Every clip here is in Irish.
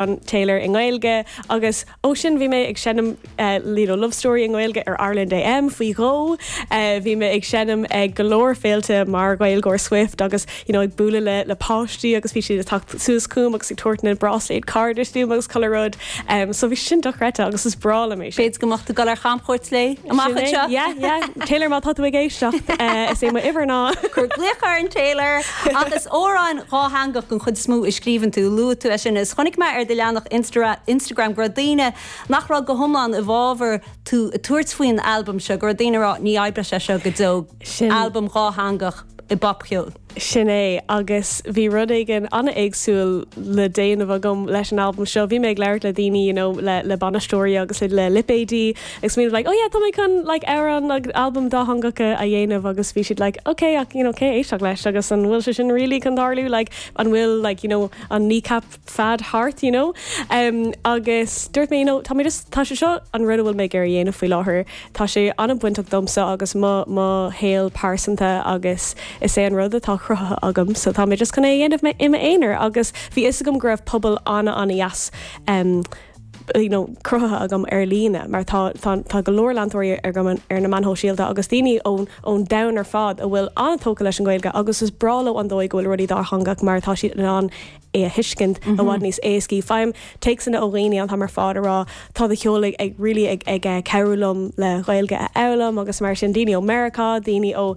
an Taylor i nGaeilge agus ó sin bhí mé ag seinm you know Love Story i nGaeilge ar Ireland AM faoi dhó, bhí mé ag seinm ag go leor féilte mar Ghaeilgeoir Swift agus you know ag bualadh le le páistí agus bhí siad ag teacht suas chugam agus ag tabhairt na bráisléad cairdis dom agus chuile rud em so bhí sin dochreidte agus is breá liom é sin. B'fhéidir go mbeadh tú ag dul ar chamchuairt léi amach anseo? Yeah yeah Taylor má tá tú ag éisteacht is é mo uimhir ná. Cuir glaoch ar an Taylor! Ach is amhráin dhátheangach den chuid is mó a scríobhann tú. Luaigh tú é sin is chonaic mé ar do leathanach Instagram go raibh daoine nach raibh go hiomlán i bhfábhar tú ag tabhairt faoin albam seo, go raibh daoine ag rá 'ní oibreoidh sé seo go deo', albam dátheangach i bpopcheol. Sin é, agus bhí rud éigin an-éagsúil le déanamh agam leis an albam seo. Bhí mé ag labhairt le daoine, you know le le bainisteoirí agus le lipéadaí, Agus bhí siad like, oh yeah, tá mé chun like amhrán agus albam dátheangacha a dhéanamh agus bhí siad like, ok, ach you know cé a éistfeadh leis agus an bhfuil sé sin really chun tarlú like an bhfuil like you know an Kneecap fad thart you know? Um, agus dúirt mé you know tá mé just, tá sé seo an rud a bhfuil mé ag iarraidh dhéanamh faoi láthair, tá sé an-bhainteach domhsa agus mo, mo shaol pearsanta agus is é an rud atá cruthaithe agam so tá mé just chun é a dhéanamh i m'aonar agus bhí fhios agam go raibh pobal an-an-dheas um, you know, cruthaithe agam ar líne, mar tá, tá, tá go leor leantóirí ar, agam ar na meáin shóisialta agus daoine ón, ón domhan ar fad a bhfuil an-tógtha leis an Ghaeilge agus is breá leo an dóigh go bhfuil rudaí dátheangach mar atá siad in ann é a thuiscint i bhfad níos éascaí. Faighim téacsanna ó dhaoine an t-am ar fad ag rá, tá do cheol ag, ag really ag, ag cabhrú liom le Gaeilge a fhoghlaim agus mar sin, daoine ó Meiriceá, daoine ó.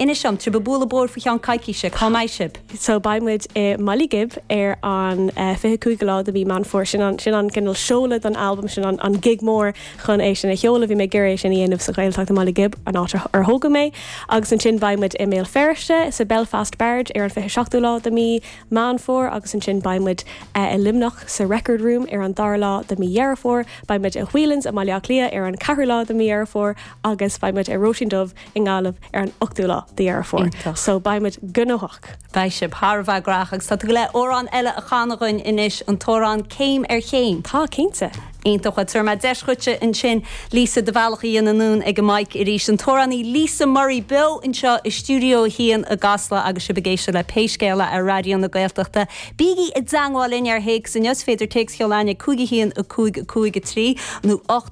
Inis dom, tá tú ag bualadh bóthair faoi cheann coicíse, cá mbeidh sibh? So beidh muid i mBaile Ghib ar an 25ú lá de mhí Meán Fómhair, sin an, sin an cineál seoladh don albam, sin an, an gig mór chun é sin a sheoladh, bhí mé ag iarraidh é sin a dhéanamh sa Ghaeltacht i mBaile Ghib, an áit ar tógadh mé. Agus ansin beidh muid i mBéal Feirste, sa Belfast Barge ar an 27ú lá de mhí Meán Fómhair agus ansin beidh muid eh i Luimneach sa Record Room ar an dara lá de mhí Dheireadh Fómhair, beidh muid i Whelan's i mBaile Átha Cliath ar an ceathrú lá de mhí Dheireadh Fómhair agus beidh muid i Róisín Dubh i nGaillimh ar an 8ú lá de Dheireadh Fómhair. Iontach. So beidh muid gnóthach. Beidh sibh thar a bheith graitheach agus tá tú ag goil amhrán eile a chanadh dhúinn anois, an t-amhrán Céim ar Chéim. Tá, cinnte. Iontach. Bhuel, tabharfaidh mé deis dhuitse ansin Lisa do bhealach a dhéanamh anonn ag an mike arís. An t-amhránaí Lisa Murray beo anseo i stiúideo a haon i gCasla agus sibh ag éisteacht le Pé Scéal É ar Raidió na Gaeltachta. Bígí i dteangmháil linn ar théacs inniu. Is féidir téacs a sheoladh ag 515553 nó 8.